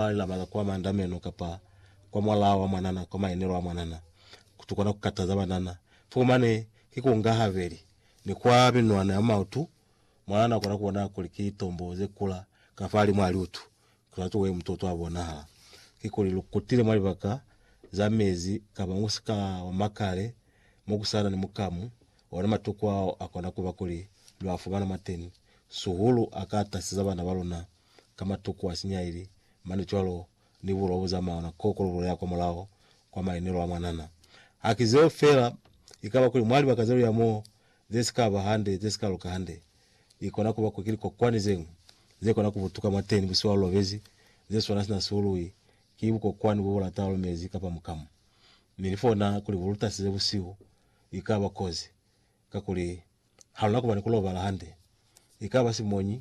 Ba labala kwa mandameno kapa kwa mwalaa wa mwanana, kwa maenelo a mwanana, kutu kona ku kataza banana. Fo mane ki ku nga habeli, ni kwa minwana ya maotu, mwanana akona ku bona kuli ki tombo ze kula ka fa limu a liutu, kutuana tuwe mutoto a bonahala. Kikuli lu kutile mwa libaka za mezi kapa mwa musika wa makale mo ku sa na ni mukamu, ona matuku ao a kona ku ba kuli lwa fumana mwateni. Suhulu a ka taseza bana ba luna ka matuku a sinyaili, mane cwalo ni bulwa bo zamaya na koko lu lulela kwa mulaho kwa maenelo a mwanana. Haki zeo fela, ikaba kuli mwa libaka ze luya moo ze si ka ba hande, ze si ka luka hande, i kona kuba kuli ki likokwani ze ñwi ze kona kubutuka mwateni busiwa lu lobezi, ze swana sina si uluwi ki bukokwani bo bu lata lu mezi kapa mukamu. Mi ni fona kuli bu lutasi ze busihu i ka ba kozi, kakuli ha lu na kuba ni ku lobala hande. Ikaba simoñi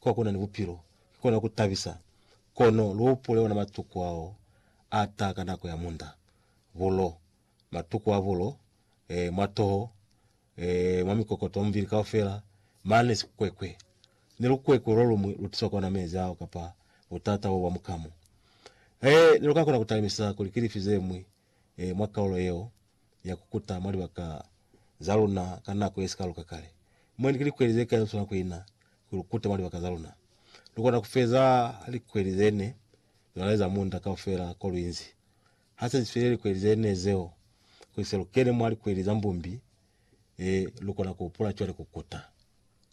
Kwa kuna ni bupilo, ki kona ku tabisa, kono lu hupule ona matuku ao a ta ka nako ya munda, bulo, matuku a bulo, eh, mwa toho, eh, mwa mikokoto, mwa mubili kaufela, mane sikukwekwe. Ni lukwekwe lo luñwi lu tiswa kona mezi ao kapa butata bo bwa mukamu. Eh, ne lu ka kona ku talimisa kuli ki lifi ze ñwi e, mwa kaulo yeo ya ku kuta mwa libaka za luna ka nako ye si ka luka kale. Mwendi ki likweli ze kai lu swanela ku ina ku lu kuta mwa libaka za luna? Lu kona ku feza likweli ze ne lu na eza munda kaufela ko lu inzi. Ha se si file likweli ze ne zeo, kuli se lu kene mwa likweli za mbumbi, e, lu kona ku hupula cwale ku kuta,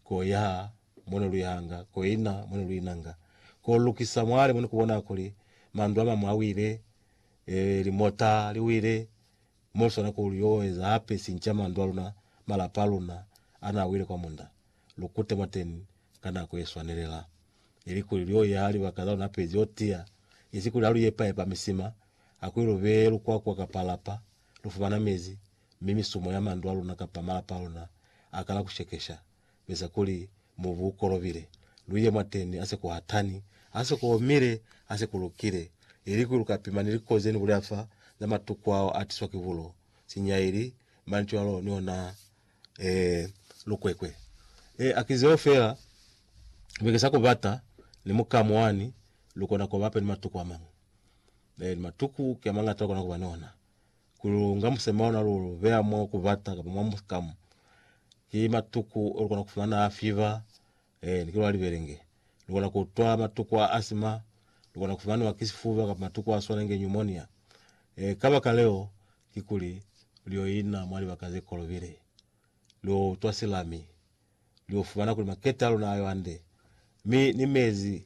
ku yaha mo ne lu yahanga, ku ina mo ne lu inanga, ku lukisa mwale mo ne ku bonaha kuli mandu a mañwi a wile, Ee, limota li wile mo li swana ku lu yo eza hape sinca mandu a luna, malapa a luna a na wile kwa munda. Lu kute mwateni ka nako ye swanelela, ili kuli lu yo yaha libaka za luna pezi yo tiya, isi kuli ha lu yepa-yepa misima, ha kuli lu beye lukwakwa kapa lapa, lu fumana mezi, mi misumo ya mandu a luna kapa malapa a luna a kala ku shekesha, Beza kuli mubu u kolobile, lu ye mwateni ha se ku hatani, ha se ku omile, ha se ku lukile, ili kuli lu ka pima ni likozi ze ni bulela fa za matuku ao a tiswa ki bulo, sinyaili, mani cwalo, ni ona ee, lukwekwe. Ee, a ki zeo fela. Mi ki sa ku bata ni mukamu wani lu kona ku ba hape ni matuku a mañwi. Ee, ni matuku ki a mañata lu kona ku ba ni ona. kuli lu nga musema ona lu beya mo ku bata kapa mwa muskamu ki matuku o lukona ku fumana a fiva eh, ni ke lwa libelenge lukona ku twa matuku a asima lukona ku fumaniwa ki sifuba kapa matuku a swanenge pneumonia eh, ka baka leo ki kuli lio ina mwa libaka ze kolobile lio utwa silami lio fumana kuli makete a luna ayo ande mi ni mezi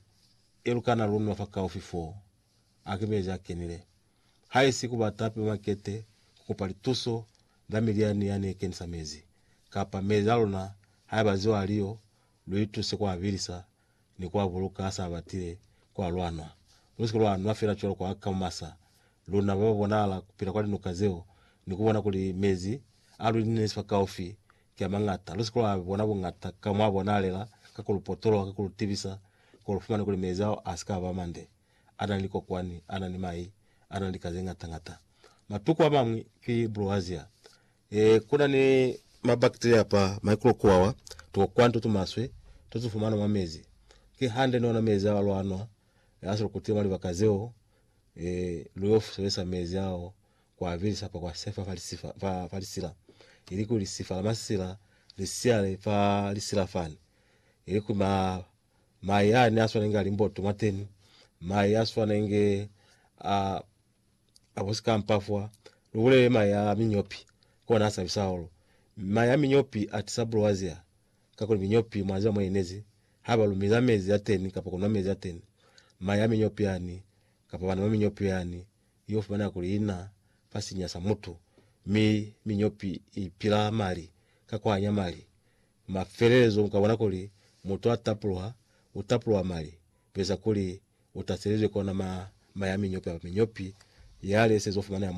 e lukana lunwa fa kaufi foo a ki mezi a kenile haisi ku batapi ba makete ku kopa lituso la miliani ya ne kenisa mezi, kapa mezi a luna haiba ziwa aliyo, lu ituse ku a bilisa ni ku a buluka ha sa batile ku a lwanwa. Lu si ke lwa nwa fela cwalo kwa ka mumasa, luna ba ba bonahala ku pila kwa linuka zeo, ni ku bona kuli mezi a lu inezi fakaufi ki a mañata. Lu si ke lwa a bona buñata ka mo a bonahalela, ka ku lu potoloha, ka ku lu tibisa, kuli lu fumane kuli mezi ao a si ka ba mande. a na ni likokwani, a na ni mai, a na ni lika ze ngata ngata. Matuku a mañwi ki broazia. E, ku na ni mabakteria kapa maikulokuwawa, tukokwani to tumaswe to tu fumanwa mwa mezi. Ki hande ni ona mezi ao lwa nwa, e, a si lukutile mwa libaka zeo. E, lu yo sebelisa mezi ao ku a bilisa kapa ku a sefa fa lisifa, fa, fa lisila. Ilikuli lisifa la masila li siyale fa lisila fani, ilikuli ma, Maye a ne a swanenge a limboto mwa teni, maye a swanenge a a busikampa fwa lu bulele maye a minyopi, kona a sabisa hahulu. Maye a minyopi a tisa bulwazia, kakuli minyopi mwa ziba mo inezi ha ba lumiza mezi a teni kapa kunwa mezi a teni. Maye a minyopi yani, kapa bana ba minyopi yani, yo fumaneha kuli ina fa sinya sa mutu, mi minyopi i pila mali ka kuhanya mali, Mafelelezo ukabona kuli mutu a tapulwa, u tapulwa mali, kueza kuli u taselizwe kona ma, ma ya minyopi kapa minyopi yale sezo fumaneha mwa